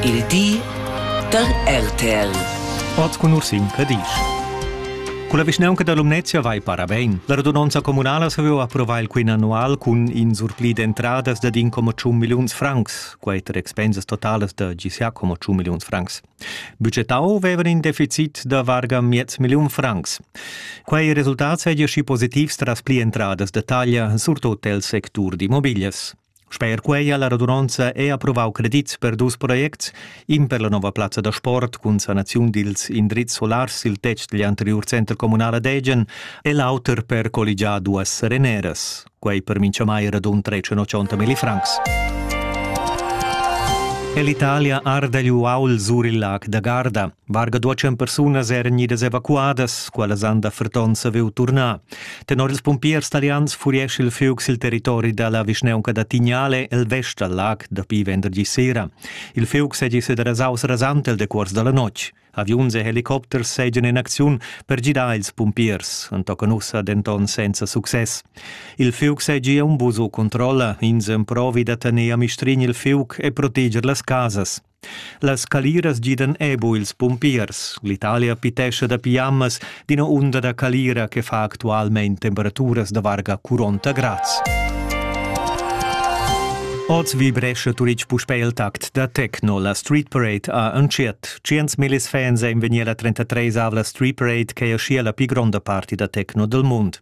Il di da RTL. Oz cun Ursin Cadisch. Culla vischnaunca da Lumnezia vai para bein. La radunonza communala saviu approvar il quin annual cun in surpli d'entradas dad in coma tschun milliuns francs, quei ter expensas totalas da GCA coma tschun milliuns francs. Budgetau vevan in deficit da varga miez milliun francs. Quei resultat seigi schi positivs tras pli entradas da taglia, surtot el sectur d'immobilias. Sper quei ha la radunonza è approvau credits per dus projects, in per la nova plazza da sport cun sanaziun dils indrizs solars sil tetg digl anteriur center communal ad Egen e l'auter per colligiar duas sereneras. Quei per mintgamai radun 380 millifrancs. Ell'Italia arda gli uaul sur il lac da Garda. Varga duecem persunas eran idas evacuadas, quellas han da ferton saviu turnar. Tenor ils pumpiers talians furescha il fuoc sil territori dalla vischnaunca da Tignale el vest dal lag dapi venderdi sera. Il fuoc seigi sederasaus rasant el decuors dalla notg. Aviuns e helicopters seigien in acziun per gidar ils pumpiers, entochen ussa denton senza success. Il fuoc seigi un buso controlla, ins emprovi da tener a mistrin il fuoc e proteger las casas. Las caliras gidan ebo ils pumpiers. L'Italia pitescha da piamas d'ina unda da calira che fa actualmein temperaturas da varga 40 grads. Oz vibrescha Turic puspè il tact da techno. La Street Parade ha entschiet. Tschient millis fans ein vegnir a 33 avla Street Parade che ha schia la pli gronda party da techno del mund.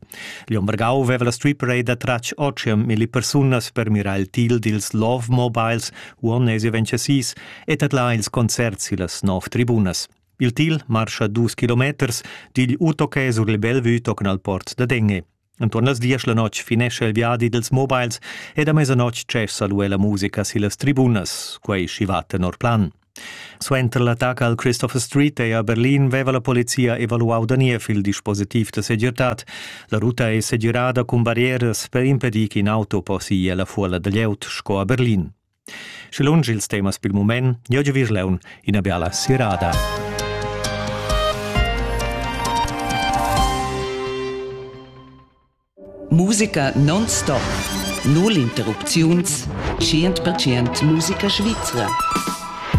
Lion Vargau veva la strip raid da tratg ochium milli persunas per mirar il til dils Love Mobiles uonnesi vencesis e tadlar ils concerts sillas nov tribunas. Il til marscha dus kilometers digl Utoke sur il Bellevue tocan al port da Denge. Entuorn las diesch la notg finescha il viadi dels mobiles ed a mesanotg cessa lu la musica sillas tribunas, quei schi va tenor plan. Suenter l'attacca al Christopher Street ei a Berlin veva la polizia evaluau da niev il dispositiv da segirtad. La ruta ei segirada cun barrieras per impedir ch'in auto possi ir la fuola da glieud sco a Berlin. Sche lunsch ils temas pil mument, jeu giu Virleun ina biala sirada. Musica non-stop. Null interrupziuns. 100% Musica svizra.